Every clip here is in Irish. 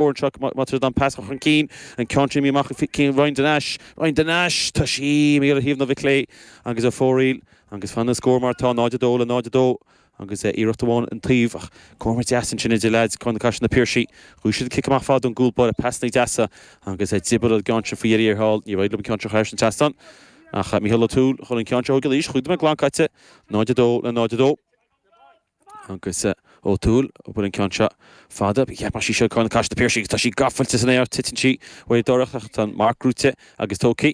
Boird seo má tríd an pas a chur chun cinn, an ceann sin a fhí amach go cinn Ryan de Nais Ryan de Nais tá sí imithe ar thaobh na láimhe clé agus ar fóraoil agus fanann an scór mar atá 0-2 le 0-2 agus iarracht amháin an taobh ach comhartha deas ansin idir leaids Carna Caiseal na Piarsaigh bhuaigh siad an cic amach fada ón gcúl báire pasannaí deasa agus a d'oibir an gceann sin faoi dheireadh thiar thall ní raibh liom ceann seo chairs an teastáin ach Mícheál Ó Tuathail chun an ceann seo go laois cúig nóiméad glan caite 0-2 le 0-2. Agus Ó Tuathail, buaileann an ceann seo fada. Cheapfá sí seo Carna Caiseal na Piarsaigh agus tá sí gabhailte san aer, titeann sí uaidh díreach ach tá an marc gnóite agus tógtha.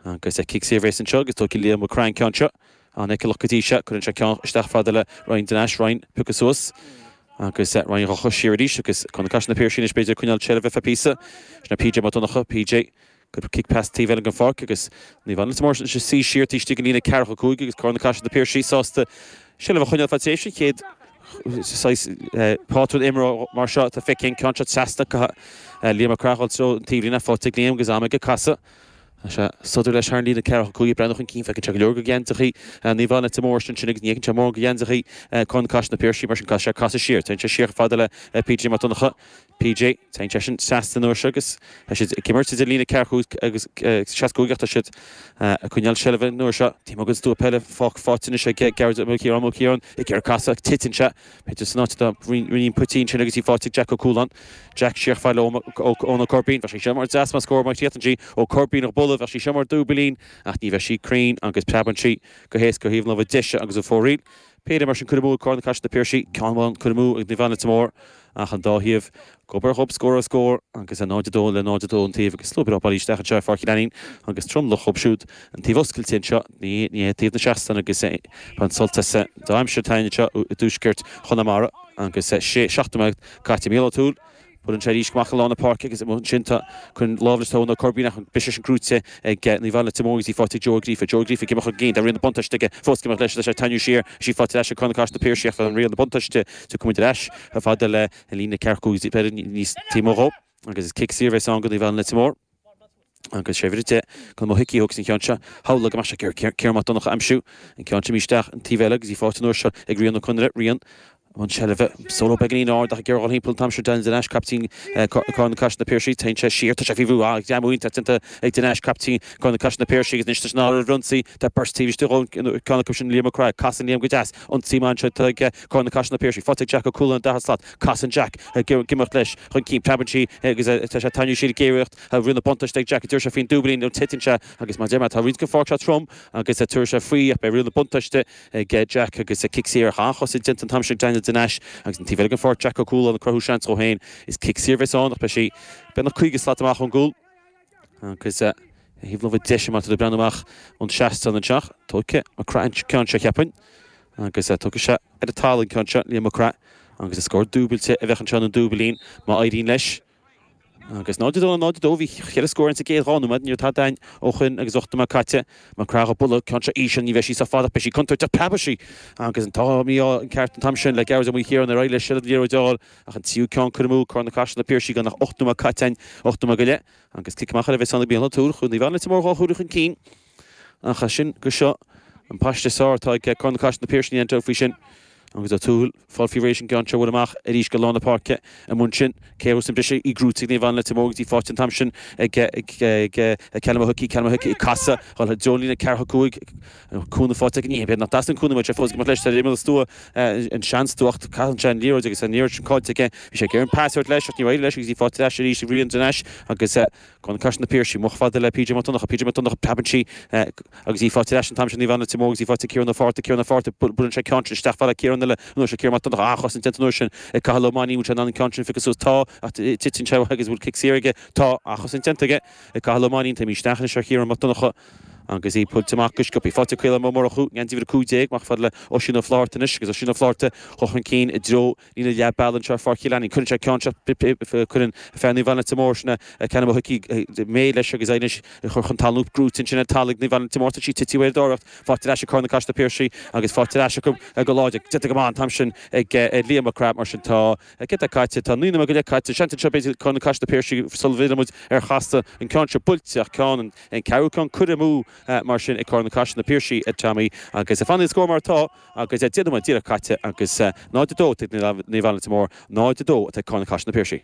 Agus cic saor a bheas anseo agus tógfaidh Liam Mac Craith an ceann seo. An-fheiceálach go dtí seo. Cuireann sé ceann isteach fada le Ryan de Nais, Ryan piocadh suas agus Ryan dhá casadh siar arís agus Carna Caiseal na Piarsaigh anois b'fhéidir coinneáil seilbhe ar feadh píosa. Sin é PJ Mac Donnacha, PJ. Cuireadh cic pas taobh eile den pháirc agus Naomh Anna Leitir Móir ansin ag suí siar taobh istigh den líne ceathracha cúig agus Cora na Caise, na Piarsaigh sásta seilbh a choinneáil fad tar éis an chéad saghas pátrún imeartha mar seo atá feicthe an ceann seo trasna go dtí Liam Mac Craith ag dul i dtreo an taobhlíne faighte ag Liam agus am aige casann sé sodar leis thar an líne ceathracha cúig ag breathnú chun cinn feiceann sé go leor de gheansaíochaí Naomh Anna Leitir Móir ansin agus ní fheiceann sé mórán de gheansaí Carna Caiseal na Piarsaigh mar sin caithfidh sé casadh siar téann sé siar chomh fada le PJ Mac Donnacha PJ, Tá seisean sásta an uair seo agus tá siad ag imirt idir líne ceathracha cúig agus seasca cúig ach tá siad ag coinneáil seilbhe an uair seo. Tá mo chuid stua peile fágtha faighte anois ag Gearóid Ó Ciaráin. Ó Ciaráin, Ag iarraidh casadh ach titeann sé. B'fhéidir san áit a rinneadh an botún sin agus í faighte ag Jack Ó Cualáin. Jack, Siar chomh fada le Eoin Ó Coirbín. Bheadh sí seo mar deas mar scór má thiteann sí. Ó Corrbuín, Ag bualadh. Bheadh sí seo mar dúbailín ach ní bheadh sí cruinn agus preabann sí go héasca ar thaobh na láimhe deise agus ar fóraoil. Péire mar sin, curtha amú ag Carna Caiseal na Piarsaigh ceann amháin, curtha amú ag Naomh Anna Leitir Móir ach an dá thaobh, gob ar ghob, scór ar scór agus é 0-2 le 0-2 an taobh agus slua breá bailithe isteach anseo i Pháirc Uí Lainín agus tromlach dhóibh siúd, an taobh oscailte anseo, ní hé taobh na seastán agus ag baint sult as an dea-aimsir atá againn anseo i dtuaisceart Chonamara agus é seacht nóiméad caite Mícheál Ó Tuathail. Buaileann sé í seo amach i lár na páirce agus amuigh ansin chun lámh le Tadhg Ó Coirbín ach bhí sí sin gnóite ag Naomh Anna Leitir Móir agus í faighte ag Joe Ó Gríofa. Joe Ó Gríofa ag imeacht chun cinn, tá riail na buntáiste aige fós ag imeacht leis agus é ag teannadh siar agus í faighte ar ais ag Carna Caiseal na Piarsaigh ach tá riail na buntáiste aige gabhfaidh muid ar ais chomh fada le líne ceathracha cúig beagáinín taobh amuigh dhó agus is cic saor a bheas ann do Naomh Anna Leitir Móir. Agus sé uimhir a 10, Conall Ó hIcí a thógfas an ceann seo, Shamhlaigh go maith seo gur Ciarán Mac Donncha a aimsiú, an ceann seo imithe isteach an taobh eile agus í faighte an uair seo ag Rían Ó Conaire, Rían i mbun seilbhe, solo beagáinín ard ach ag iarraidh ghoil thimpeall an t-am seo Daniel de Nais, caiptín Carna Caiseal Na Piarsaigh, téann sé siar, tá sé faoi bhrú, ach jab iontach déanta ag de Nais, caiptín Carna Caiseal Na Piarsaigh agus anois leis an áireamh ar ionsaí, tá beirt taobh istigh dhó, ar cheann acu sin Liam Mac Craith, casann Liam go deas, ionsaí maith anseo ag Carna Caiseal Na Piarsaigh, faighte ag Jack Ó Cualáin an dara slat, Casann Jack ag imeacht leis chun cinn. Preabann sí agus tá sé taitneamhach. Sílim go géar riail na buntáiste ag Jack. Deir sé faoin dúbailín nó titeann sé agus mar a deir mé tá roinnt den pháirc seo trom agus tabharfaidh sé faoi ach beidh riail na buntáiste ag Jack agus cic saor ach an-chosaint déanta an t-am sin ag Daniel de Nais agus an taobh eile den pháirc Jack Ó Cualáin ag cruthú seans dhó féin is cic saor a bheas ann ach beidh sí beagnach 50 slat amach ón gcúl. Agus ar thaobh na láimhe deise mar atá muid ag breathnú amach ón seastán anseo. Tóigfidh Mac Craith an ceann seo, cheapfainn. Agus tóigfidh sé ar an talamh an ceann seo, Liam Mac Craith. Agus is scór dúbailte a bheadh anseo, nó dúbailín, má éiríonn leis. Agus 0 2 le 0 2. Bhí cheithre scór ins an gcéad dhá nóiméad. Ní raibh tada againn ó shoin agus ocht nóiméad caite. Mac Craith á bualadh, ceann seo íseal, ní bheidh sí sách fada ach beidh sí contúirteach. Preabfaidh sí. Agus an t-ádh mí-ádh ceart an t-am sin le Gearóid Ó Maoilchiaráin nár éirigh leis seilbh an liathróid a fháil. Ach an tríú ceann, curtha amú ag Carna Caiseal na Piarsaigh gan ach ocht nóiméad caite ann, ocht nóiméad go leith agus cic amach ar a bheith sáinnithe bliana Tour Chluain Naomh Anna Leitir Móir dhá huaire chun cinn. Ach as sin go seo, an paiste is fearr atá ag Carna Caiseal na Piarsaigh níl aon dabht faoi sin. Agus Ó Tuathail fágfaí arís an gceann seo a bhualadh amach arís go lár na páirce i Mun Sin. Cé a thabharfas an briseadh í gnóite ag Naomh Anna Leitir Móir agus í faighte an t-am sin ag Callum Hickey Callum Hickey ag casadh i dtreo líne an ceathracha cúig An cúnamh faighte ag an oíche. B'fhéidir nach dteastaíonn cúnamh uaidh, sé fós ag imeacht leis ar imeall an stua, an seanstua. Caitheann sé an liathróid agus tá an liathróid sin caillte aige. Bhí sé ag iarraidh an pas a thabhairt leis ach níor éirigh leis agus í faighte ar ais arís ag Rían de Nais agus Carna Caiseal na Piarsaigh. Amach fad le PJ Mac Donnacha. PJ Mac Donnacha, preabann sí agus í faighte ar ais an t-am seo ag Naomh Anna Leitir Móir agus í faighte ag Ciarán Ó Fátharta. Ciarán Ó Fátharta, buaileann sé ceann sin isteach fad le Ciarán eile an uair seo. Ciarán Mac Donnacha, an-chosaint déanta an uair sin ag Cathal Ó Mainnín. An bhfuil sé in ann an ceann sin a phiocadh suas? Tá, ach titeann sé agus an bhfuil cic saor aige? Tá, an-chosaint déanta aige ag Cathal Ó Mainnín. Téimid isteach anois ar Chiarán Mac Donnacha. Agus í buailte amach go sciobtha, faighte ag Caolán Ó Murchú, geansaí uimhir 15, amach fad le Oisín Ó Flaithearta anois agus Oisín Ó Flaithearta chun chun cinn i dtreo líne leath bealaigh anseo ar Pháirc an Chathánaigh. Cuireann sé ceann seo, cuireann fear Naomh Anna Leitir Móir sin a ceann amuigh chuici, Dé May leis agus é anois curtha chun talún, gnóite ansin ar talamh ag Naomh Anna Leitir Móir, tá sí tite i bhféirdheoireacht, faighte ar ais ag Carna Caiseal na Piarsaigh agus faighte ar ais acu go láidir, déanta go maith an t-am sin ag Liam Mac Craith mar sin tá. Céard atá caite, tá naoi nóiméad go leith caite, an seans an t-am seo b'fhéidir Carna Caiseal na Piarsaigh sula bhfillfidh muid ar Chasla an ceann seo buailte, ach ceann, an ceathrú ceann curtha amú, mar sin, ag Carna Caiseal na Piarsaigh, a Tommy, agus fanfaidh an scór mar atá agus deich nóiméad díreach caite agus 0-2 ag Naomh Anna Leitir Móir, 0-2 atá ag Carna Caiseal na Piarsaigh.